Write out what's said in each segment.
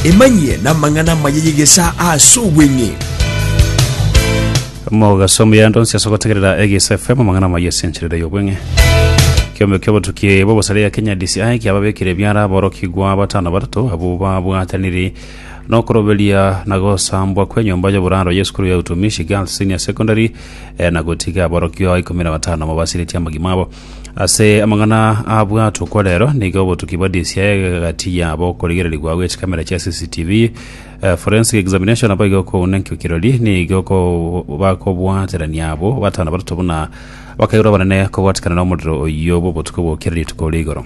Emanyie namang'ana amaya y'egesaa ase obweng'e. Mogaso omuya ande onsi ase ogotegerera Egeisa FM amang'ana amaya ase encherera y'obweng'e. Kiombe kia obotuki bw'obosare ya Kenya DCI kiababekire ebiara aborokigwa batano batato abwo babwataniri nokoroberia na gosambwa kw'enyomba y'oboraro y'esukuru ya Utumishi Girls Senior Secondary eh, na gotiga aborokigwa ikomi na batano mobasiretie amagima abo. Ase amang'ana abwatwa okwa rero nigo obotuki bwa DCI egati yabo okorigererigwa gw'echikamera chia CCTV eh, forensic examination abo igo kouna enkio kirori nigo ko- bakobwaterania abo batano batato buna bakaigurwa abanene kobwatikana nomorero oyio bw'obotuko bw'okera rituko rigoro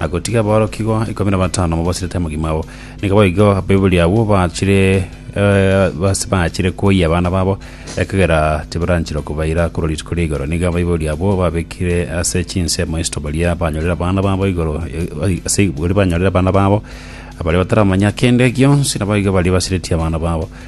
na gotiga aborokigwa ikomi na batano mobasirete mogima oo. Nigo boigo abaibori abwo bachire eh, bas- bachire koyia abana babo, ekagera tibaranchera kobaira korwa rituko ria igoro. Nigo abaibori abwo babekire ase chinsemo isito baria banyorire abana babo igoro, eh, ai- ase baria banyorire abana babo, abaria bataramanya kende gionsi, naboigo baria basiretie abana babo.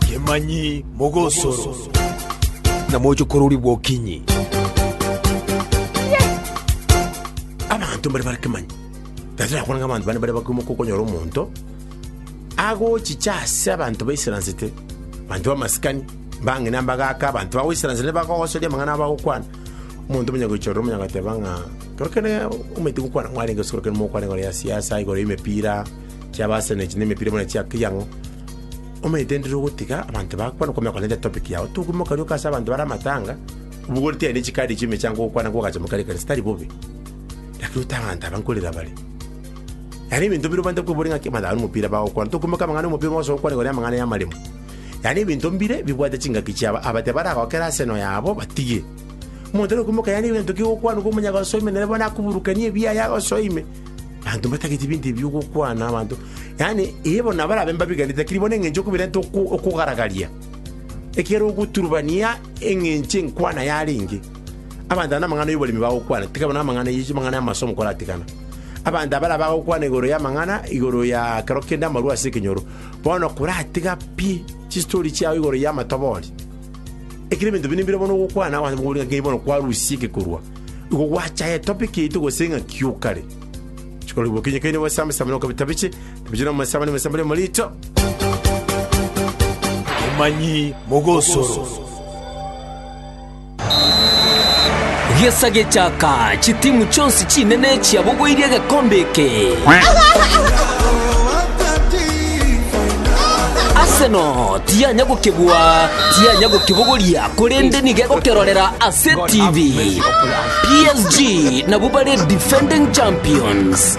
Kemanyi mogosoro. Na moche korori bwokinyi. Abanto mbare bare kemanyi. Tari nakwana ng'a abanto bane bare bakoimoka okonyora omonto agochicha ase abanto baisaransete, abanto b'amasikani, mbang'ina mbagaaka, abanto bagoisaransete nibagogosoria amang'ana abagokwana. Omonto omonyagoichorora omonye agateba ng'a ekero omoiti gokwana mwarenge gose ekero mogokwana igoro ya siasa, igoro y'emepira, chi'Abarsene echi na emepira bono chia kira ang'o, omanyete ndire ogotiga abanto bakwana okomanya kore nere topic yago. Tokumia omokania oka ase abanto bare amatanga, obogoreti aye na echikadi echio emechango ogokwana nigo ogacha mokaria ekanisa, tari bobe, lakini ote abanto aba nkorera bare. Yaani ebinto bire obwenerete kweboria ng'a ki? Abanto aba nomopira bagokwana, tokumia oka amang'ana ya omopira, mogosoka gokwana igoro y'amang'ana y'amaremo. Yaani ebinto mbire bibwate chingaki chiabo aba tibaragokera ase enoyo yabo batigie. Omonto nokoimoka yaani egento kigokwanwa komonyaga osoe ime nere bono akoburukanie ebiaye agosoe ime. Abanto mbatagete ebinto ebi bigokwana abanto. Yaani ee bono nabarabe mbabiganete lakini bono eng'encho okobirenta oko- okogaragaria. Ekero ogoturubania eng'encho enkwana yarenge. Abanto aba namang'ana y'oboremi bagokwana tiga bono amang'ana ye amang'ana y'amasomo koratigana. Abanto abare abagokwana igoro y'amang'ana igoro ya ekero kende amarwa ase ekenyoro. Bono koratiga pi chistori chiao igoro y'amatobori, ekero ebinto binde mbire bono ogokwana ase amaboko aria, ng'a bono kwarusia egekorwa, igo gwachaya etope kiaito gose ng'a kiokare. Chikori bokinyi kaini obasame same na okabita biche, biche nomosamani omosambe rimo riicho. Omanyi mogosoro. Gesa gechaka, chitimu chionsi chinene chiabogoirie egekombe eke. Arsenal tiyanya gokebua, tiyanya gokibogoria, korende nigo egokerorera ase TV. PSG nabwo bare defending champions.